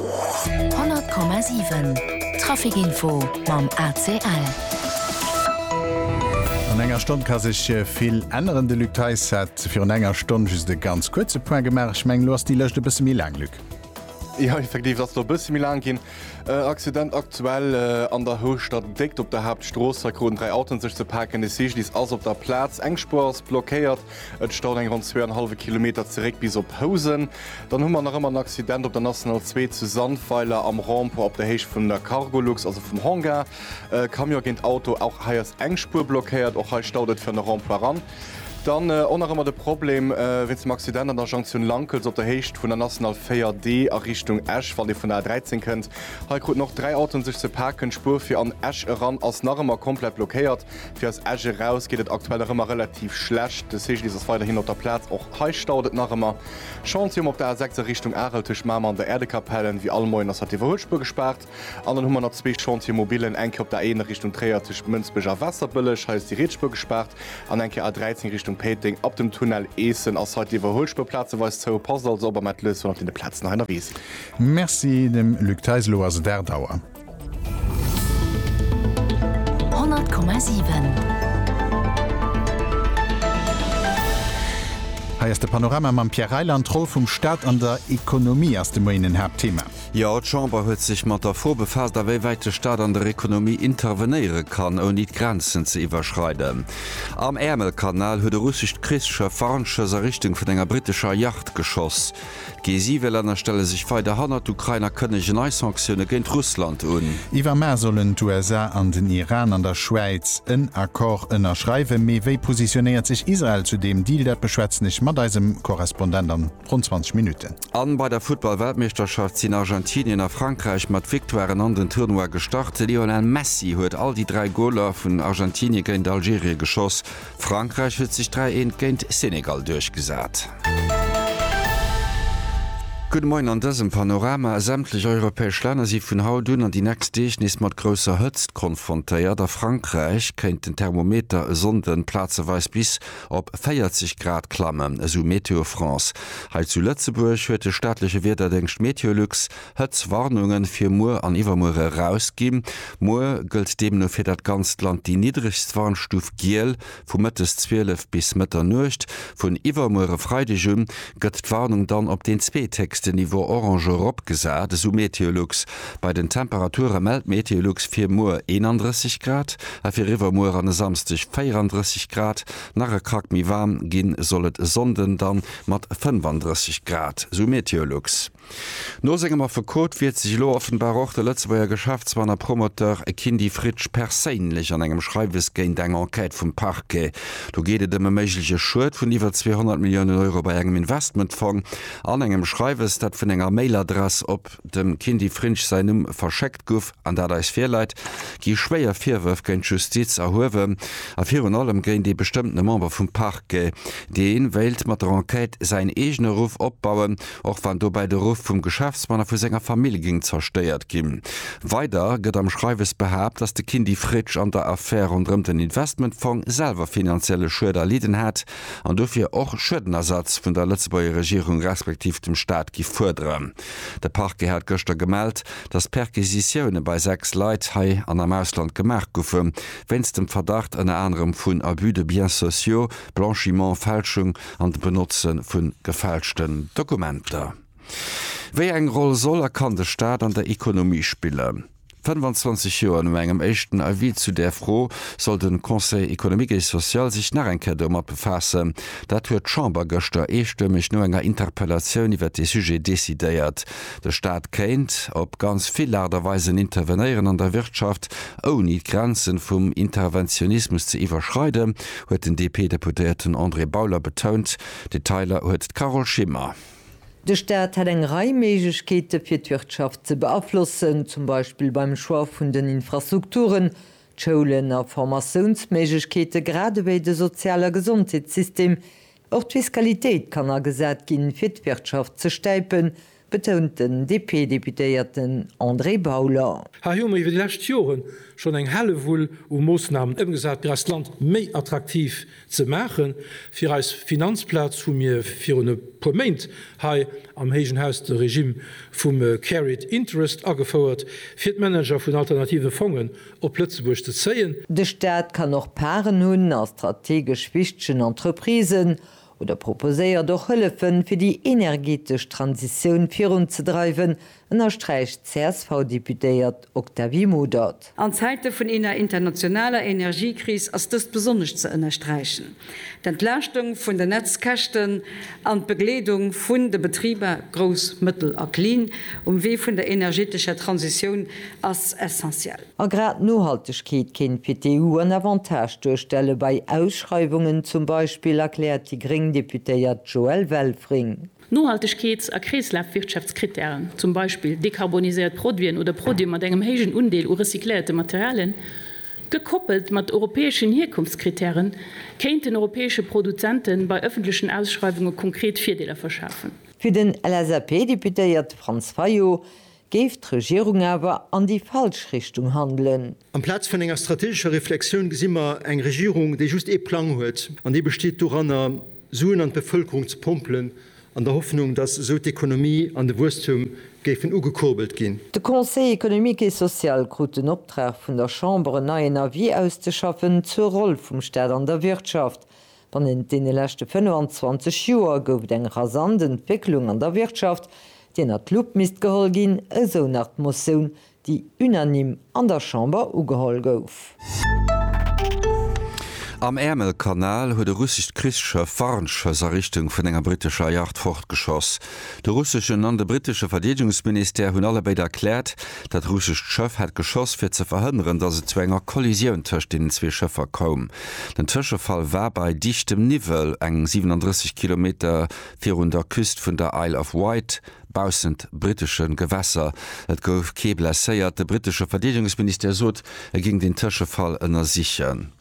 100,7 Traficinfo mam ACL. An enger Stonn ka sech vill änneren. De Luc Theis hat virun enger Stonn just e ganz kuerze Point gemaach. Ech mengen, elo ass déi Lëscht e bësse méi laang, Luc. Jo, effektiv, se ass elo e bësse méi laang ginn. Accident aktuell an der Houschter Déckt op der Haaptstrooss. Hei kruten dräi Autoen sech ze paken. De Cyclist ass op der Plaz. Eng Spuer ass blockéiert. Et staut eng ronn zwee an hallwe Kilometer zeréck bis op Housen. Dann hu mer nach ëmmer en Accident op der National 2 zu Sandweiler am Rond-point op der Héicht vun der Cargolux, also vum Hangar. Camion géint Auto, och hei ass eng Spuer blockéiert. Och hei staut et fir an de Rond-point eran. Dann och nach ëmmer de Problem wéinst dem Accident an der Jonktioun Lankels op der Héicht vun der National 4 D a Richtung Esch, wann ee vun der A13 kënnt. Hei kruten och dräi Autoen sech ze paken. D'Spuer fir an Esch eran ass nach ëmmer komplett blockéiert. Fir aus Esch eraus geet et aktuell nach ëmmer relativ schlecht. De Segellift ass weiderhin op der Plaz. Och hei stauert et nach ëmmer. Chantier um op der A 6 a Richtung Arel tëscht Mamer an der Äerdekapell. Ewéi all Moien ass hatt d'Iwwerhuelspuer gespaart. An dann hu mer nach zwee Chantiere mobillen, eng Kéier op der A1 a Richtung Tréier tëscht Mënsbech a Waasserbëlleg. Hei ass déi Rietsspuer gespaart. An eng Kéier A13 Richtung Péiteng. Ab dem Tunnel Eessen ass hei d'Iwwerhuelspuer plazeweis zou. Passt also op a mellt lues wann der op deene Plazen hei ënnerwee sidd. Merci dem Luc Theis. Elo ass et 8 Auer. Hei ass de Panorama mam Pierre Reyland. D'Roll vum Staat an der Ekonomie ass de Moien en Haaptthema. Jo, d'Chamber huet sech mat der Fro befaasst, awéiwäit de Staat an der Ekonomie intervenéiere kann, ouni d'Grenzen ze iwwerschreiden. Am Äermelkanal huet e russescht Krichsschëff Warnschoss a Richtung vun enger brittescher Yacht geschoss. D'G7-Länner stelle sech weider hannert d'Ukrain a kënnege nei Sanktioune géint Russland un. Iwwer Mä sollen d'USA an den Iran an der Schwäiz en Accord ënnerschreiwen. Mee wéi positionéiert sech Israel zu deem Deal? Dat beschwätzen ech mat eisem Korrespondent an ronn 20 Minutten. An bei der Futtball-Weltmeeschterschaft sinn Argentinien a Frankräich mat Victoiren an den Tournoi gestart. De Lionel Messi huet all déi dräi Goler vun Argentinien géint Algerien geschoss. Frankräich huet sech 3 eent géint Senegal duerchgesat. Gudde Moien an dësem Panorama. Sämtlech europäesch Länner si vun haut un an déi nächst Deeg nees mat grousser Hëtzt konfrontéiert. A Frankräich kéint den Thermometer e Sonnde plazeweis bis op 40 Grad klammen, esou Météo France. Hei zu Lëtzebuerg huet de staatleche Wiederdéngscht Meteolux Hëtzwarnunge fir muer an iwwermuer erausgi. Muer gëllt deemno fir dat ganzt Land déi niddregst Warnstuf Giel, vu mëttes 12 bis Mëtternuecht. Vun iwwermuer e Freideg u gëtt d'Warnung dann op deen zweethéchsten Niveau Orange eropgesat, esou Meteolux. Bei den Temperature mellt Meteolux fir muer 31 Grad a fir iwwermuer an e Samsdeg 34 Grad. Nach e Krack méi waarm gi soll et e Sonnden da mat 35 Grad, esou Meteolux. No sengem Affekot wiert sech elo offenbar och de Lëtzebuerger Geschäftsmann a Promoteur Kindy Fritsch perséinlech an engem Schreiwes géint eng Enquête vum Parquet. Do geet et ëm e méigleche Schued vun iwwer 200 Milliounen Euro bei engem Investmentfong an engem Schreiwes, dat vun enger Mailadress op dem Kindy Frinsch säin Numm verschéckt guff an dat eis virläit, gi schwéier Virwërf géint d'Justiz erhuewen a virun allem géint ee bestëmmtene Member vum Parquet, dee wéilt mat der Enquête säin eegene Ruff opbauen. och wann dobäi de Ruff vum Geschäftsmann a vu senger Famill géing zerstéiert ginn. Weider gëtt am Schreiwes behaapt, dass de Kindy Fritsch an der Affär ronderëm den Investmentfong selwer finanzielle Schued erlidden hätt an dofir och Schuedenersatz vun der Lëtzebuerger Regierung respektiv dem Staat giff fuerderen. De Parquet hat gëschter gemellt, dass Perquisitioune bei 6 Leit hei an am Ausland gemaach goufe wéinst dem Verdacht ënner anerem vun Abus de biens sociaux, Blanchiment, Fälschung an de Benotze vun gefälschten Dokumenter. Wéi eng Roll soll a kann de Staat an der Ekonomie spillen? 25 Joer no engem éischten Avis zu där Fro soll de Conseil économique et social sech nach eng Kéier domat befaassen. Dat huet d'Chamber gëschter eestëmmeg no enger Interpellatioun iwwert dee Sujet decidéiert. De Staat kéint op ganz vill Aart a Weisen intervenéieren an der Wirtschaft, ouni d'Grenze vum Interventionismus ze iwwerschreiden. huet den DP-Deputéierten André Bauler betount. Detailer huet d'Carole Schimmer. De Staat hätt eng Rei Méiglechkeete fir d'Wirtschaft ze beaflossen, zum Beispill beim Choix vun den Infrastrukturen, d'Schoulen a Formatiounsméiglechkeete, gradewéi de Sozial a Gesondheetssystem, Och d'Fiskalitéit kann agesat ginn, fir d'Wirtschaft ze stäipen, betount den DP-Deputéierten André Bauler. Hei hu mer iwwer déi lescht Joren schonn eng Hellewull u Moossnamen ëmgesat, fir eist Land méi attraktiv ze maachen. Fir eis Finanzplaz hu mir virun e puer Méint hei am héijen Haus de Regimm vum Carried Interest agefouert, fir d'Manager vun alternative Fongen op Lëtzebuerg ze zéien. De Staat kann och Parten hunn a strategesch wichtegen Entreprisen oder proposéiert och Hëllefen, fir déi energeetesch Transitioun virunzedreiwen, ënnersträicht d'CSV-Deputéiert Octavie Modert. An Zäite vun eener internationaler Energiekris ass dëst besonnesch ze ënnersträichen. d'Entlaaschtung vun den Netzkäschten an d'Begleedung vun de Betriber, grouss, mëttel a klin, um Wee vun der energetescher Transitioun ass essentiell. A grad d'Nohaltegkeet kéint fir d'EU en Avantage duerstelle bei Ausschreiwungen zum Beispill, erkläert déi gréng Deputéiert Joëlle Welfring. Nohaltegkeets a Kreeslafwirtschaftskrittären, zum Beispill dekarboniséiert Produiten oder Produite mat engem héijen Undeel u recycléierte Materialien, gekoppelt mat europäeschen Hierkonftskrittären, kéinten europäesche Produzente bei ëffentlechen Ausschreiwunge konkret Virdeeler verschafen. Fir den LSAP-Deputéierte Franz Fayot Géif d'Regierung awer an déi falsch Richtung handelen? Amplaz vun enger strategescher Reflexioun gesi mer eng Regierung, déi just ee Plang huet, an dee besteet doranner, Suen an d'Bevëlkerung ze pompelen, an der Hoffnung, datt esou d'Ekonomie an de Wuesstum géifen ugekurbelt ginn. De Conseil économique et social krut den Optrag vun der Chamber, en neien Avis auszeschaffen zur Roll vum Staat an der Wirtschaft. Bannent deene leschte 25 Joer gouf et eng rasant Entwécklung an der Wirtschaft, déi ënnert d'Lupp misst geholl ginn, esou nach d'Motioun, déi unanime an der Chamber ugeholl gouf. Am Äermelkanal huet e russescht Krichsschëff Warnschëss a Richtung vun enger brittescher Yacht fortgeschoss. De russeschen an de brittesche Verdeedegungsministère hunn alle béid erkläert, dat russescht Schëff hätt geschoss, fir ze verhënneren, datt et zu enger Kollisioun tëscht deenen zwee Schëffer koum. Den Tëschefall war bei dichtem Niwwel, eng 37 Kilometer virun der Küst vun der Isle of Wight, baussent brittesche Gewässer. Et gouf kee blesséiert. De brittesche Verdeedegungsministère sot, e géing den Tëschefall ënnersichen.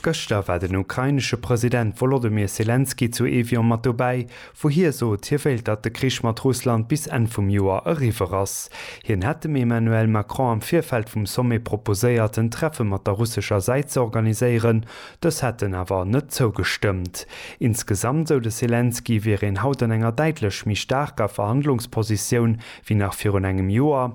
Gëschter war den ukrainesche President Wolodymyr Selenskyj zu Evian mat dobäi, wou hie sot, hie wéilt datt de Krich mat Russland bis Enn vum Joer eriwwer ass. Hien hätt dem Emmanuel Macron am Virfeld vum Sommet proposéiert en Treffe mat der russescher Säit ze organiséieren, dës hätten awer net zougestëmmt. Insgesamt, sou de Selenskyj, wier een haut an enger däitlech méi staarker Verhandlungspositioun wéi nach virun engem Joer.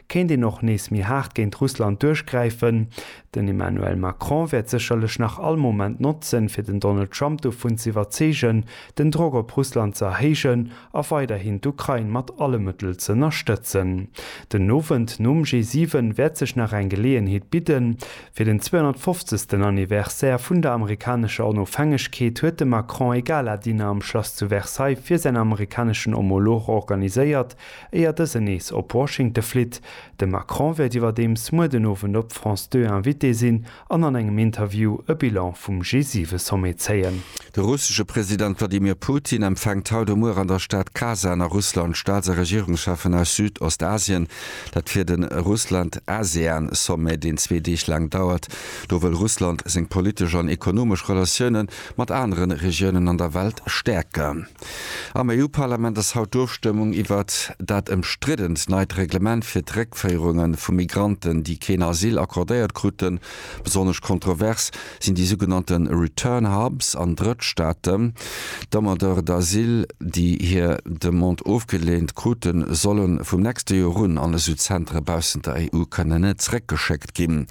kéint een och nees méi haart géint Russland duerchgräifen. Den Emmanuel Macron wäert sécherlech nach all Moment notzen, fir den Donald Trump dovun ze iwwerzeegen, den Drock op Russland ze erhéijen a weiderhin d'Ukrain mat alle Mëttel ze ënnerstëtzen. Den Owend nom G7 wäert sech nach eng Geleeënheet bidden. Fir den 250. Anniversaire vun der amerikanescher Onofhängegkeet huet de Macron e Gala-Dîner am Schlass zu Versailles fir säin amerikaneschen Homolog organiséiert, Éier dësen nees op Washingte flitt. De Macron wäert iwwerdeems muer den Owend op France Deux Invité sinn an an engem Interview e Bilan vum G7-Sommet zéien. De russesche President Wladimir Putin empfänkt haut a muer an der Stad Kasan a Russland d'Staats a Regierungscheffen aus Südostasien. Dat fir de Russland-ASEAN-Sommet, deen zwee Deeg laang dauert. Do wëll Russland seng politesch an ekonomesch Relatioune mat anere Regiounen an der Welt stäerken. Am EU-Parlament ass haut d'Ofstëmmung iwwert dat ëmstriddent neit Reglement fir d'Réckféierunge vu Migranten, déi keen Asyl accordéiert kruten. Besonnesch kontrovers sinn déi sougenannte Return Hubs an Drëttstaaten. D'Demandeurs d'asile, déi hir Demande ofgeleent kruten, solle vum nächste Joer un an esou Zentere baussent der EU kënnen zeréckgeschéckt ginn.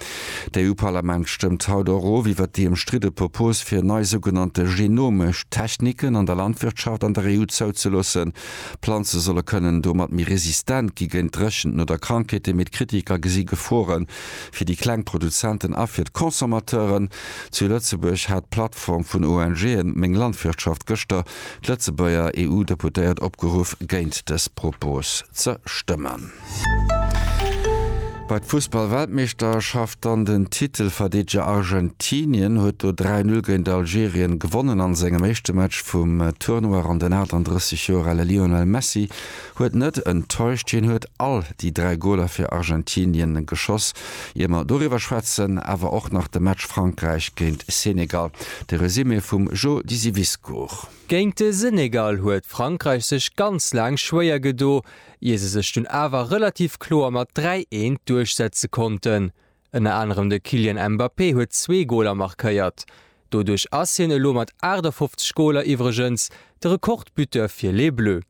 D'EU-Parlament stëmmt haut och of iwwert déi ëmstridde Propos fir nei sougenannte genomesch Techniken an der Landwirtschaft an der EU zouzeloossen. Planze solle kënnen domat méi resistent gi géint Dréchenten oder Krankheeten, mee d'Kritiker gesi Gefore fir déi kleng Produzenten a fir d'Consommateuren. Zu Lëtzebuerg hat d'Plattform vun ONGe Meng Landwirtschaft gëschter d'Lëtzebuerger EU-Deputéiert opgeruff géint dës Propos ze stëmmen. Bei d'Fussballweltmeeschterschaft dann den Titelverdeedeger Argentinien huet do 3-0 géint Algerien gewonnen an sengem éischte Match vum Tournoi ran. Den 38 Joer ale Lionel Messi huet net enttäuscht, hien huet all déi 3 Goler fir Argentinien geschoss. Ier mer doriwwer schwätzen, awer och nach de Match Frankräich géint Senegal. De Resumé vum Jo Disiviscourt. Géint de Senegal huet Frankräich sech ganz laang schwéier gedo, ier se sech dunn awer relativ kloer mat 3 eent duerchsetze konnten. Ënner anerem de Kylian Mbappé huet zwee Goler markéiert. Doduerch ass hien elo mat 58 Goler iwwregens de Rekordbuteur fir Les Bleus.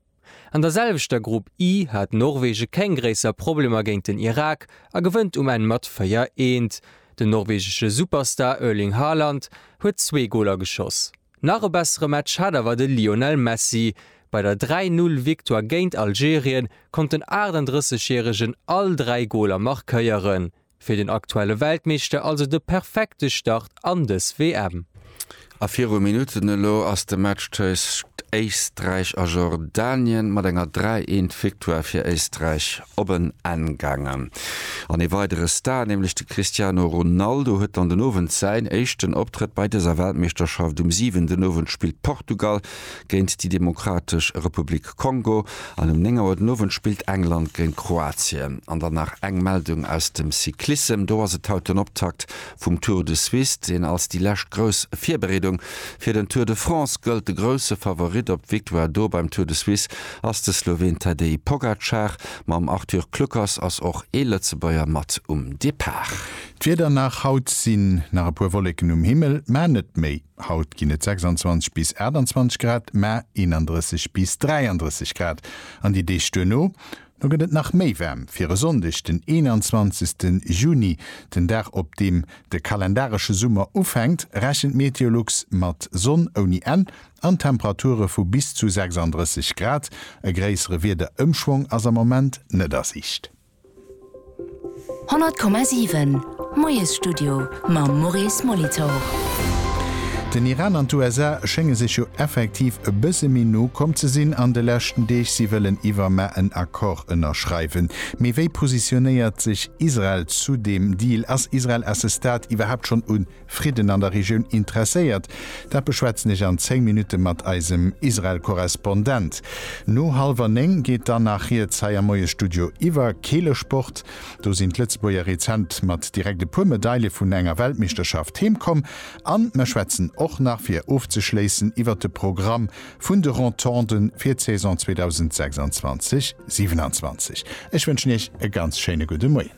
An der selwechter Grupp I hat Norwege keng gréisser Problemer géint den Irak a gewënnt um Enn mat 4 eent. Den norwegesche Superstar Erling Haaland huet zwee Goler geschoss. Nach e bessere Match hat awer de Lionel Messi. Bei der 3 Null Victoire géint Algerien konnt den 38 järegen all 3 Goler markéieren. Fir den aktuelle Weltmeeschter also de perfekte Start an dës WM. A viru Minutten elo ass de Match tëscht Éisträich a Jordanien mat enger 3 Eent Victoire fir Éisträich op en Enn gaangen an ee weidere Star, nämlech de Cristiano Ronaldo huet dann den Owend säin éischten Optrëtt bei dëser Weltmeeschterschaft. Um 7 den Owend spillt Portugal géint déi Demokratesch Republik Kongo an um 9 Auer den Owend spillt England géint Kroatien. An dann nach eng Meldung aus dem Cyclissem, do ass et haut den Optakt vum Tour de Suisse, deen als déi lescht grouss Virbereedung fir den Tour de France gëllt. De grousse Favorit op d'Victoire do beim Tour de Suisse ass de Sloween Tadej Pogacar, mam Arthur Kluckers ass och ee Lëtzebuerger mat um Depart. D'Wieder nach, Haut sinn nach e puer Wolleken um Himmel, mä net méi. Haut ginn et 26 bis 28 Grad, mä 31 bis 33 Grad an déi Deeg duerno. No gëtt et nach méi waarm fir e Sonndeg, den 21. Juni, den Dag op deem de kalendaresche Summer ufänkt, rechent Meteolux mat Sonn ouni Enn, an Temperature vu bis zu 36 Grad. E gréissere Wiederëmschwong ass am Moment net a Siicht. 100,7 Moiesstudio mam Maurice Molitor. Den Iran an d'USA schénge sech jo effektiv e bësse méi no komm ze sinn an de leschten Deeg. Si wëllen iwwermar en Accord ënnerschreiwen. Mee wéi positionéiert sech Israel zu deem Deal? Ass Israel à ce stade iwwerhaapt schonn un Fridden an der Regioun interesséiert? Dat beschwätzen ech an 10 Minutte mat eisem Israel-Korrespondent. No hallwer 9 geet dann nach riets hei am Moiesstudio iwwer Keelesport. Do sinn d'Lëtzebuerger rezent mat direkt e puer Medaile vun enger Weltmeeschterschaft heem komm. An mer schwätzen och nach, fir ofzeschléissen, iwwer de Programm vun de Rotonde fir d'Saison 2026, 27. Ech wënschen Iech e ganz schéine gudde Moien.